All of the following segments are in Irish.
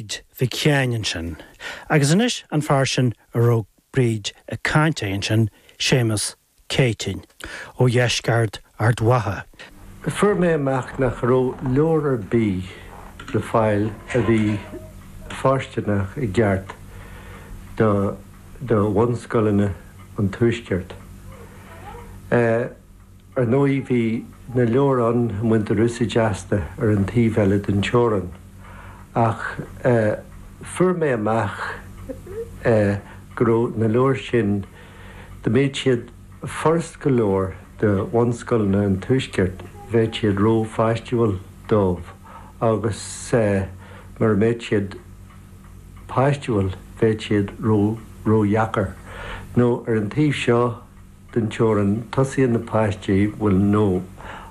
Bríd Mhic Sheáin ansin. Agus anois an fear sin a raibh Bríd ag caint air ansin, Séamus Céitinn, ó dheisceart Ard Mhacha. Fuair mé amach nach raibh leabhar ar bith le fáil a bhí fóirsteanach i gceart do bhunscoileanna an Tuaiscirt. Ar ndóigh, bhí na leabhair ann a mbaintear úsáid asta ar an taobh eile den teorann, ach fuair mé amach go raibh na leabhair sin, dá mbeadh siad furast go leor do bhunscoileanna an Tuaiscirt, bheadh siad rópháistiúil dóibh, agus mura mbeadh siad páistiúil, bheadh siad ródheacair, nó ar an taobh seo den teorainn, tosaíonn na páistí, bhuel nó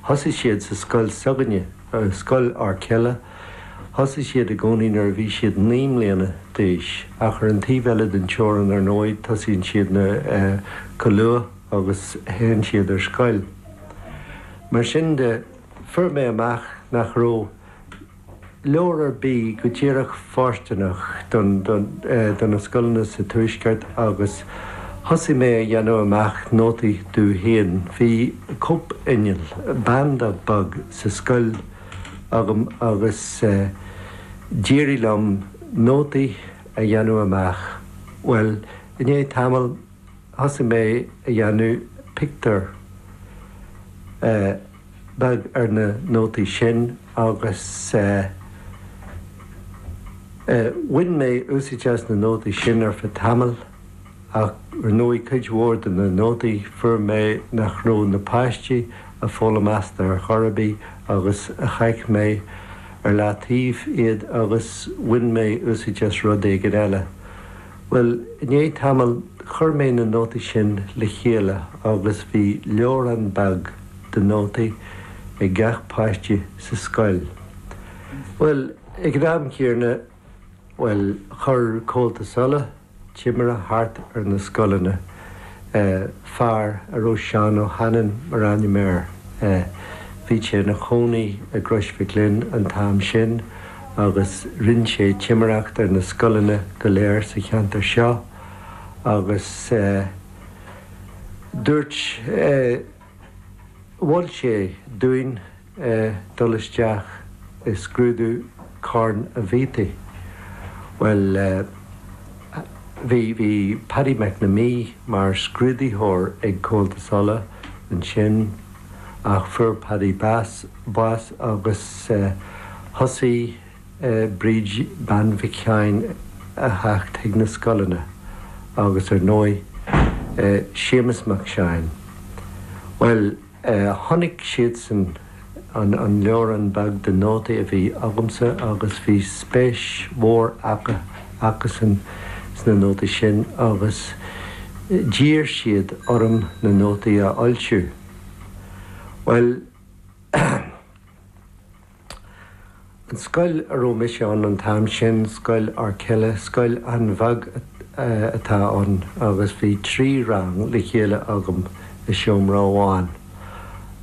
thosaigh siad sa scoil s'againne, scoil Fhoirceille, thosaigh siad i gcónaí nuair a bhí siad naoi mbliana d'aois, ach ar an taobh eile den teorainn ar ndóigh tosaíonn siad chomh luath agus théann siad ar scoil. Mar sin de, fuair mé amach nach raibh. leabhar ar bith go díreach fóirsteanach do na scoileanna sa Tuaisceart agus thosaigh mé a dhéanamh amach nótaí domh féin. Bhí cóipinneall, Banda beag, sa scoil agam agus d'éirigh liom nótaí a dhéanamh amach. Bhuel, i ndiaidh tamaill, thosaigh mé a dhéanamh pictiúr. beag ar na nótaí sin agus bhain mé úsaid as na nótaí sin ar feadh tamaill ach ar ndóigh cuid mhór de na nótaí fuair mé nach raibh na páistí a' foghlaim asta ar chor ar bith agus chaith mé ar leataobh iad agus bhain mé úsaid as rud éigin eile. Bhuel i ndiaidh tamaill chuir mé na nótaí sin le chéile agus bhí leabhrán beag. de nótaí ag gach páiste sa scoil. Bhuel, ag an am chéarna, bhuel, chuir Comhaltas Uladh timire thart ar na scoileanna, eh, fear a raibh Seán Ó hAnnáin mar ainm air, eh, bhí sé ina chónaí i gCrois Mhic Fhloinn an t-am sin agus rinn sé timireacht ar na scoileanna go léir sa cheantar seo agus, eh, dúirt, eh, Mhol sé dúinn dul isteach i scrúdú Corn an Bhiataigh. Bhuel, bhí Paddy McNamee mar scrúdaitheoir ag Comhaltas Uladh ansin ach fuair Paddy bás agus thosaigh. Bríd Bean Mhic Sheáin a theacht chuig na scoileanna agus ar ndóigh Séamus Mac Seáin. Bhuel, chonaic siadsan an leabhrán beag de nótaí a bhí agamsa agus bhí spéis mhór acusan sna nótaí sin agus d'iarr siad orm na nótaí a fhoilsiú. Bhuel. An scoil a raibh mise ann an t-am sin, Scoil Fhoirceala, scoil an-bheag atá ann agus bhí trí rang le chéile agam i seomra amháin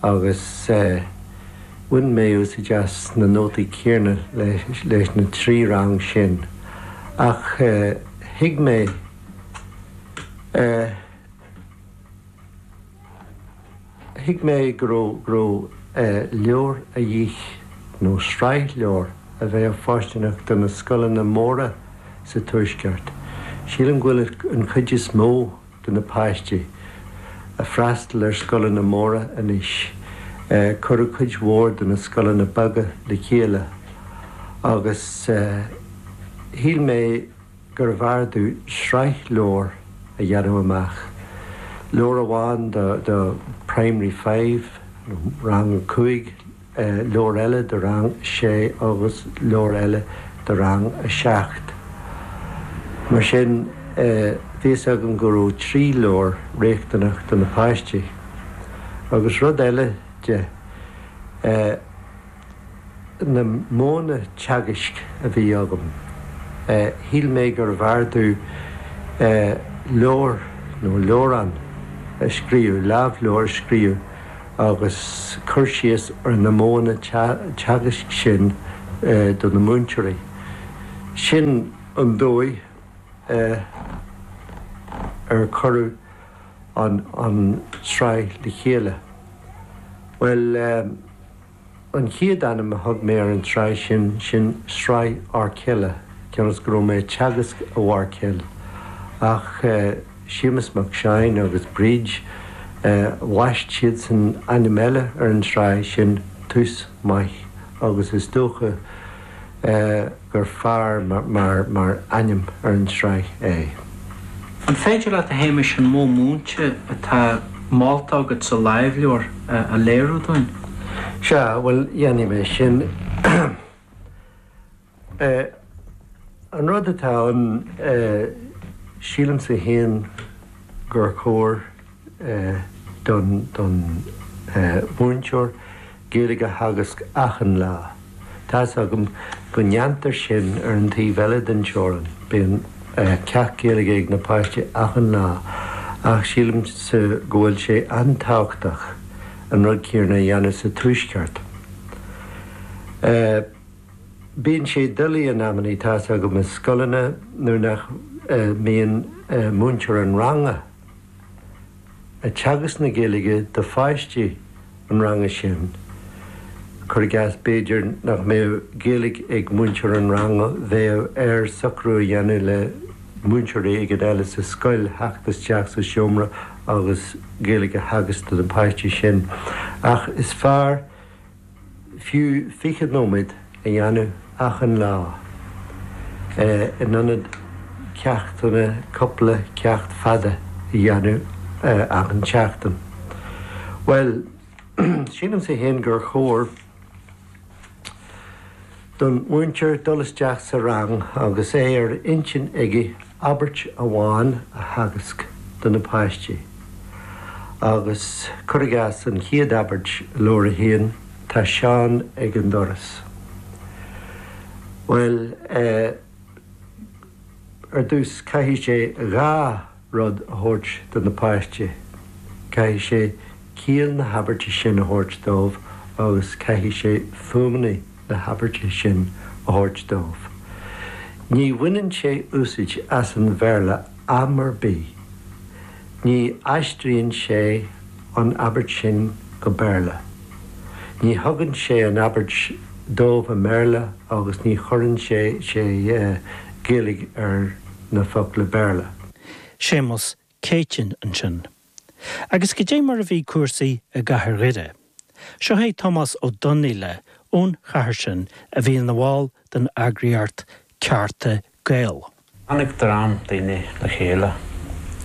agus bhain mé úsaid as na nótaí céanna leis na trí rang sin ach thuig mé Thuig mé go raibh leabhar a dhíth, nó sraith leabhar, a bheadh fóirsteanach do na scoileanna móra sa Tuaisceart. Sílim go bhfuil an chuid is mó de na páistí ag freastal ar scoileanna móra anois, cuireadh cuid mhór de na scoileanna beaga le chéile agus shíl mé, gurbh fhearr domh sraith leabhar a dhéanamh amach, leabhar amháin do Primary Five, nó Rang a Cúig, leabhar eile do Rang a Sé agus leabhar eile do Rang a Seacht. Mar sin, bhí fhios agam go raibh trí leabhar riachtanach do na páistí. Agus rud eile de. na modhanna teagaisc a bhí agam, shíl mé gurbh fhearr domh leabhar nó leabhrán a scríobh, lámhleabhar a scríobh agus cur síos ar na modhanna teagaisc sin do na múinteoirí. Sin an dóigh ar cuireadh an tsraith le chéile. Bhuel. An chéad ainm a thug mé ar an tsraith sin, sin Sraith Fhoirceala, cionn is go raibh mé ag teagasc i bhFoirceal. Ach Séamus Mac Seáin agus Bríd, bhaist siadsan ainm eile ar an tsraith sin, Tús Maith, agus is dócha, gur fearr mar ainm ar an tsraith é. An féidir leat, a Shéamais, an modh múinte atá molta agat sa lámhleabhar a léiriú dúinn? Sea, bhuel, dhéanfaidh mé sin. An rud atá ann, sílimse féin gur chóir. don mhúinteoir Gaeilge a theagasc achan lá. Tá's agam go ndéantar sin ar an taobh eile den teorann, bíonn ceacht Gaeilge ag na páistí achan lá, ach sílimse go bhfuil sé an-tábhachtach an rud céanna a dhéanamh sa tuaisceart. Bíonn sé doiligh in amannaí, tá's agam, i scoileanna nuair nach mbíonn múinteoir an ranga. ag teagasc na Gaeilge do pháistí an ranga sin, cuir i gcás, b'fhéidir nach mbeadh Gaeilge ag múinteoir an ranga, bheadh air socrú a dhéanamh le múinteoir éigin eile sa scoil theacht isteach sa seomra agus Gaeilge a theagasc do na páistí sin. Ach is fearr. fiú 20 nóiméad a dhéanamh achan lá, in ionad ceachtanna cupla ceacht fada a dhéanamh achan tseachtain. Bhuel, sílimse fhéin gur chóir. don mhúinteoir dul isteach sa rang agus é ar intinn aige abairt amháin a theagasc do na páistí agus, cuir i gcás, an chéad abairt i Leabhar 1, 'Tá Seán ag an doras. Bhuel, eh, ar dtús caithfidh sé dhá rud a thabhairt do na páistí, caithfidh sé ciall na habairte sin a thabhairt dóibh agus caithfidh sé fuaimeanna na habairte sin a thabhairt dóibh. Ní bhaineann sé úsaid as an Bhéarla am ar bith. Ní aistríonn sé an abairt sin go Béarla. Ní thugann sé an abairt dóibh i mBéarla agus ní chuireann sé sé Gaeilge ar na focla Béarla. Séamus Céitinn ansin. Agus go dté mar a bhí cúrsaí i gcathair Dhoire. Seo é Tomás Ó Donnaíle ón chathair sin a bhí ina bhall den eagraíocht Cearta Gael. Tháinig dream daoine le chéile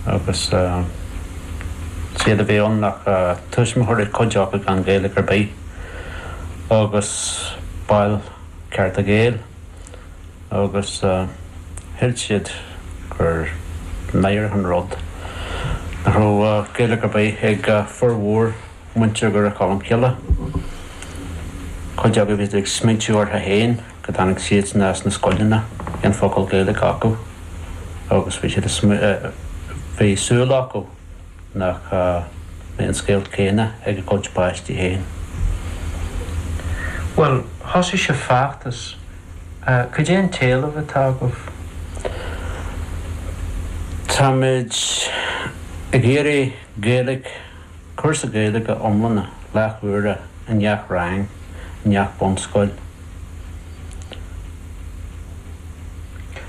agus is é a bhí ann ach tuismitheoirí cuid acu gan Ghaeilge ar bith agus baill Cearta Gael. agus shíl siad gur náireach an rud nach raibh Gaeilge ar bith ag formhór muintir Dhoire Cholm Cille. Cuid acu, bhí siad ag smaoitiú ortha féin go dtáinig siadsan as na scoileanna gan focal Gaeilge acu agus bhí siad ag bhí súil acu, nach mbeidh an scéal céanna ag a gcuid páistí féin. Bhuel, thosaigh sibh feachtas. Cad é an t-éileamh atá agaibh? Táimid ag iarraidh Gaeilge, cúrsa Gaeilge iomlána, leathuaire i ngach rang, i ngach bunscoil.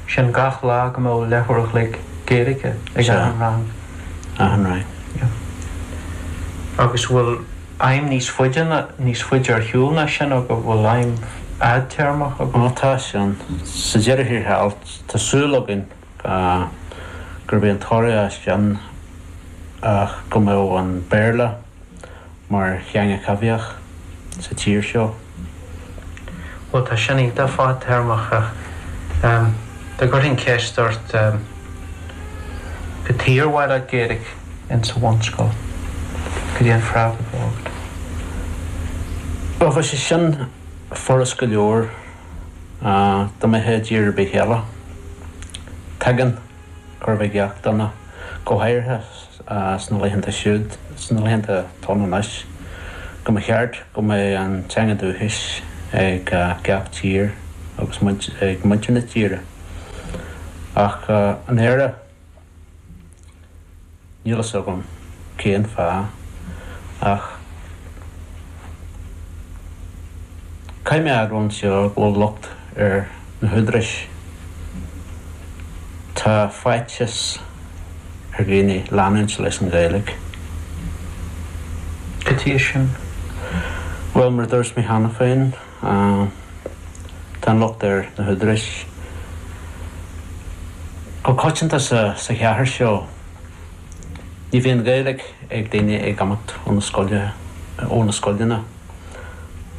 sin gach lá go mbeadh leathuair a chloig Gaeilge ag achan rang. achan rang. Agus bhfuil aidhm níos faide ná, níos faide ar shiúl ná sin agaibh, bhfuil aidhm fhadtéarmach agaibh? Bhuel tá, sin, sa deireadh thiar thall, tá súil againn go, gurb é an toradh as sin ná go mbeadh an Béarla, mar theanga a bhíodh sa tír seo. Bhuel, tá sin iontach fadtéarmach ach dá gcuirfinn ceist ort cad chuige ar mhaith leat Gaeilge insa bhunscoil, cad é an freagra a bheadh agat? Bhuel, bheadh sé sin furast go leor dá mbeadh i dtír ar bith eile. Tuigeann, gach aon duine, go háirithe. sna laethanta siúd, sna laethanta atá ann anois, go mba cheart go mbeadh an teanga dúchais ag gach tír agus ag muintir na tíre. Ach in Éirinn, níl a fhios agam cén fáth, ach caithfidh mé a admháil anseo go bhfuil locht ar. na húdaráis. Tá faitheas ar dhaoine leanúint leis an Ghaeilge caidé sin. Bhuel, mar a dúirt mé cheana féin, tá an locht ar na húdaráis go coitianta sa chathair seo. Ní bhíonn Gaeilge ag daoine ag imeacht ó na scoileanna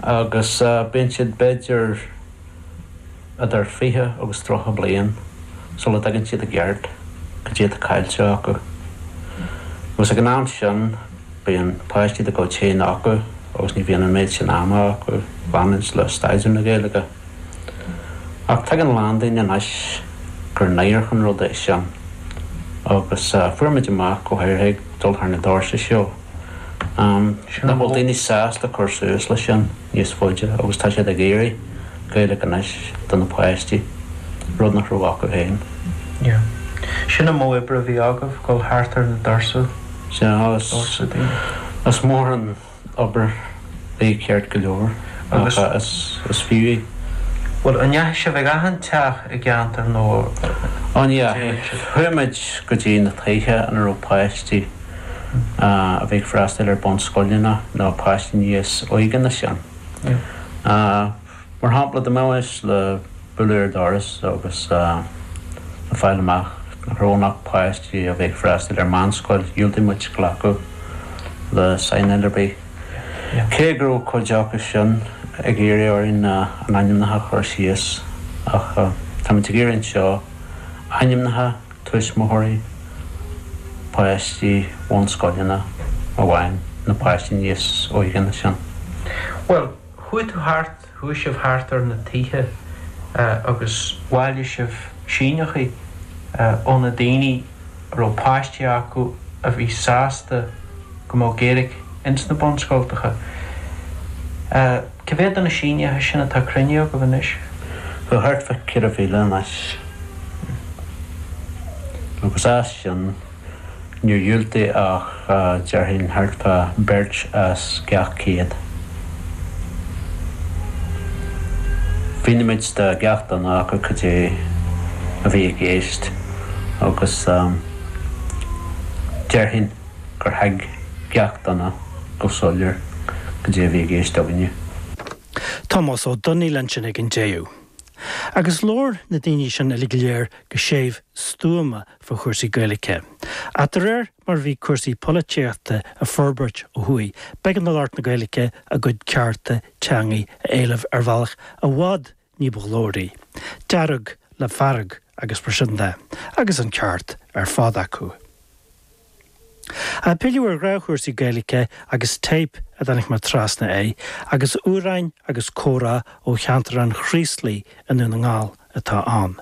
agus bíonn siad b'fhéidir, idir fiche agus tríocha bliain sula dtuigeann siad i gceart caidé atá caillte acu. Agus ag an am sin bíonn páistí dá gcuid féin acu agus ní bhíonn an méid sin ama acu leanúint le staidéar na Gaeilge. Ach tuigeann a lán daoine anois gur náireach an rud é sin. Agus fuair muid amach go háirithe ag dul thart na doirse seo, nach bhfuil daoine sásta cur suas leis sin. níos faide agus tá siad ag iarraidh Gaeilge anois do na páistí, rud nach raibh acu féin. Sin an modh oibre a bhí agaibh, dul thart ar na doirse, doirse daoine? Is mór an obair í, ceart go leor, ach is fiú í. Bhuel, an ndeachaigh sibh chuig achan teach i gceantar nó? Ní dheachaigh. Chuaigh muid go dtí na tithe ina raibh páistí. a bhí ag freastail ar bunscoileanna nó páistí níos óige ná sin. Mar shampla, dá mbeimis le bualadh ar dhoras agus le fáil amach nach raibh ann ach páistí a bhí ag freastail ar mheánscoil, dhiúltaigh muid glacadh le saighneáil ar bith, cé go raibh cuid acu sin ag iarraidh orainn a n-ainmneacha a chur síos. Ach táimid ag iarraidh anseo ainmneacha tuismitheoirí páistí bhunscoileanna amháin, nó páistí níos óige ná sin. Bhuel, chuaigh tú thart, chuaigh sibh thart ar na tithe agus bhailigh sibh síneachaí ó na daoine a raibh páistí acu a bhí sásta go mbeadh Gaeilic ins na bunscoltacha. Cá mhéad de na sínithe sin atá cruinnithe agaibh anois? Bhuel, thart fá 4,000 anois. Agus as sin, níor dhiúltaigh ach, déarfainn, thart fá beirt as gach 100. Mhínigh muid do gach duine acu cad é a bhí i gceist agus, déarfainn, gur thuig gach duine go soiléir goidé a bhí i gceist againne. Tomás Ó Domhnaill ansin ag an deireadh. Agus labhair na daoiní sin uilig go léir go séimh stuama fá chúrsaí Gaeilice. Ach de réir mar a bhí cúrsaí polaitíochta a' forbairt ó thuaidh b'éigean do lucht na Gaeilice a gcuid cearta teangaidh a éileamh ar bhealach i bhfad ní ba ghlóraí, dearg le fearg agus mar sin de, agus an ceart ar fad acu. Ag pilleadh ar ghnáthchúrsaí Gaeilge agus téip a dtáinig mé trasna air agus amhráin agus comhrá ó cheantar an Chraoslaigh i nDún na nGall atá ann.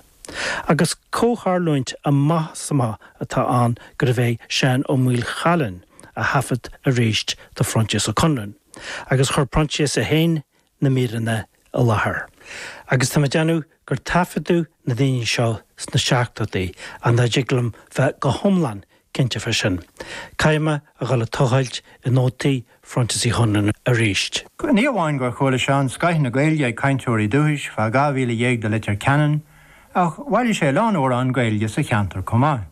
Agus comhtharlúint amach is amach atá ann gurbh é Seán Ó Maolchalann a thaifead arís do Phroinsias Ó Conluain agus chuir Proinsias é féin na míreanna i láthair agus tá mé ag déanamh gur taifeadadh na daoine seo sna seachtóidí, ach nach dtig liom bheith go hiomlán cinnte fá sin, caithfidh mé a dhul ag tochailt i nótaí Phroinsias Uí Chonluain arís. Ní amháin gur chuala Seán scoith na Gaeilge ag cainteoirí dúchais fá 12 mhíle de Leitir Ceanainn ach bhailigh sé a lán amhrán Gaeilge sa cheantar comh maith.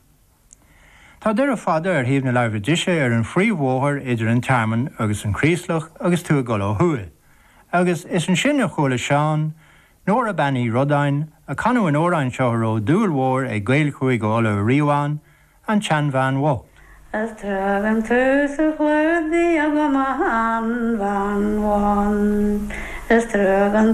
Tá Doire Fada ar thaobh na láimhe deise ar an phríomhbhóthar idir an Tearmann agus an Craoslach agus tú ag dul ó thuaidh, agus is ansin a chuala Seán, Nóra Bean Uí Rodáin, ag canadh an amhráin seo a raibh dúil mhór ag Gaeil Chúige Uladh ariamh ann, An tSeanbhean Bhocht. Is tagann tú sa chlúdaigh agam a shean-bhean bhocht, is tagann